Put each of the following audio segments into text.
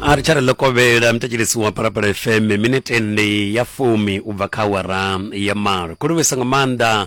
a ri tsha ri lokovhela mutetshelisi wa parapara fm minete ndi ya fumi u bva kha awara ya malo ku livhisa nga maanḓa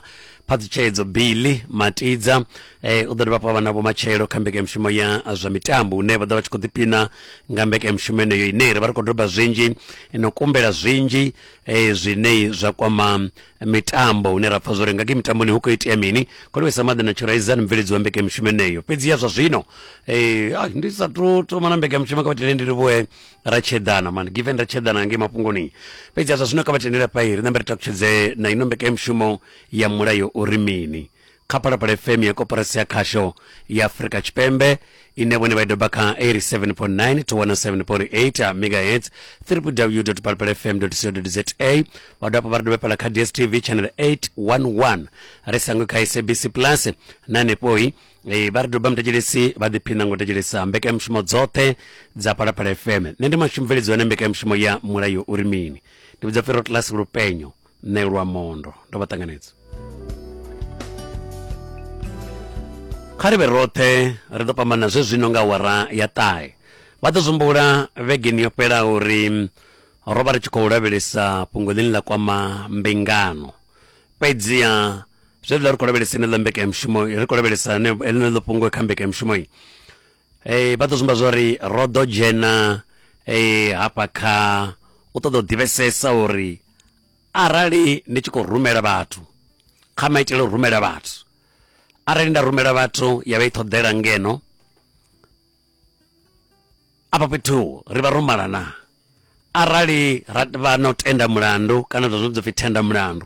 phaṱhutshedzo billy matidza eh, u ḓo dovha hafhu vha na vhomatshelo kha mbekanyamushumo ya zwa mitambo une vha ḓo vha tshi khou ḓipina nga mbekanyamushumo yeneyo ine ri vha ri khou doba zwinzhi no kumbela zwinzhi eh, zwine zwa kwama mitambo hune ra pfa zwori nga ke mitamboni hu khou itea mini kolwesa maḓi na tshiraiza ni mubveledzi wa mbekanyamushumo eneyo fhedzi ya zwa zwino eh, ah, ndi sa tu thoma na mbekanyamushumo kha vhatendele ndi livhuwe ra tsheḓana man given ra tsheḓana ngei mafhungoni fhedzi ya zwa zwino kha vhatendele fha ri nambe ri takutshedze na ino mbekanyamushumo ya mulayo uri mini kha phalaphala fm ya koporasi ya khasho ya afurika tshipembe ine vhone vha i doba kha 87.9 to 107.8 megahertz www phalaphala fm co za vha dovha hafhu vha ri dovhepela kha dstv channel 811 ri sangwe kha sabc plus na hanefhoi Eh, vha ri doba mutetshelesi vha ḓiphina ngo tetshelesa mbekanyamushumo dzoṱhe dza phalaphala fm nṋe ndi mashumubveledzo ane mbekanyamushumo ya mulayo uri mini ndi vhidza pfero class lupenyo ṋelwa mondo ndo vha ṱanganedza kha ri vhe roṱhe ri ḓo fhambana zwe zwino nga wara ya ṱahe vha ḓo zumbula vhegeni yo fhelaho uri ro vha ri tshi khou lavhelesa fhungo ḽine ḽa kwama mbingano fhedziha zwe ḽa ri khou lavhelesa ine ḽa mbekanyamushumo ri khou lavhelesa ḽeneḽo fhungo kha mbekanyamushumo Ee, vha ḓo zwi amba zwa uri ro ḓo dzhena ee, hafha kha u ṱoḓa u ḓivhesesa uri arali ndi tshi khou rumela vhathu kha maitele a u rumela vhathu arali nda rumela vhathu ya vha i ṱhoḓela ngeno afha fhethu ri vha ro malana Arali ra vha na u tenda mulandu, kana u ita zwine zwa pfi thenda mulandu,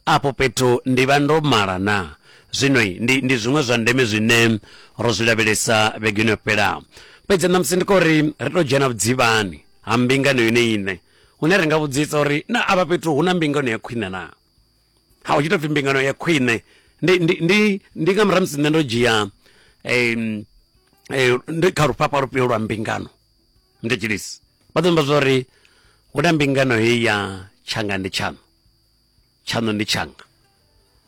afho fhethu ndi vha ndo mala na? Zwino ndi, ndi zwiṅwe zwa ndeme zwine ro zwi lavhelesa vhegeni yo fhelaho. Fhedzi ṋamusi ndi khou ri ri tou dzhena vhudzivhani ha mbingano yone iṋe, hune ri nga vhudzisa uri, Naa afha fhethu hu na mbingano ya khwine na? Ha, hu tshi tou pfi mbingano ya khwine, ndi, ndi, ndi, ndi nga murahu musi nṋe ndo dzhia, eh, eh, ndi kha lufhafha lufhio lwa mbingano? ndi tshilisi vha ḓo amba zwori hu na mbingano heyi ya tshanga ndi tshaṋu tshaṋu ndi tshanga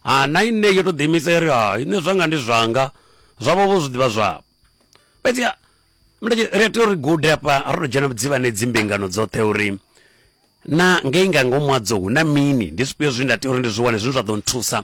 ha na ine yo tou ḓiimisa iri ha ine zwanga ndi zwanga zwavho vho zwi ḓivha zwavho fhedzi ri a tea uri gude hafha ro to dzhena dzivhane dzimbingano dzoṱhe uri na ngei nga ngomu hadzo hu na mini ndi zwifhio zwine nda tea uri ndi zwi wane zwine zwa ḓo nthusa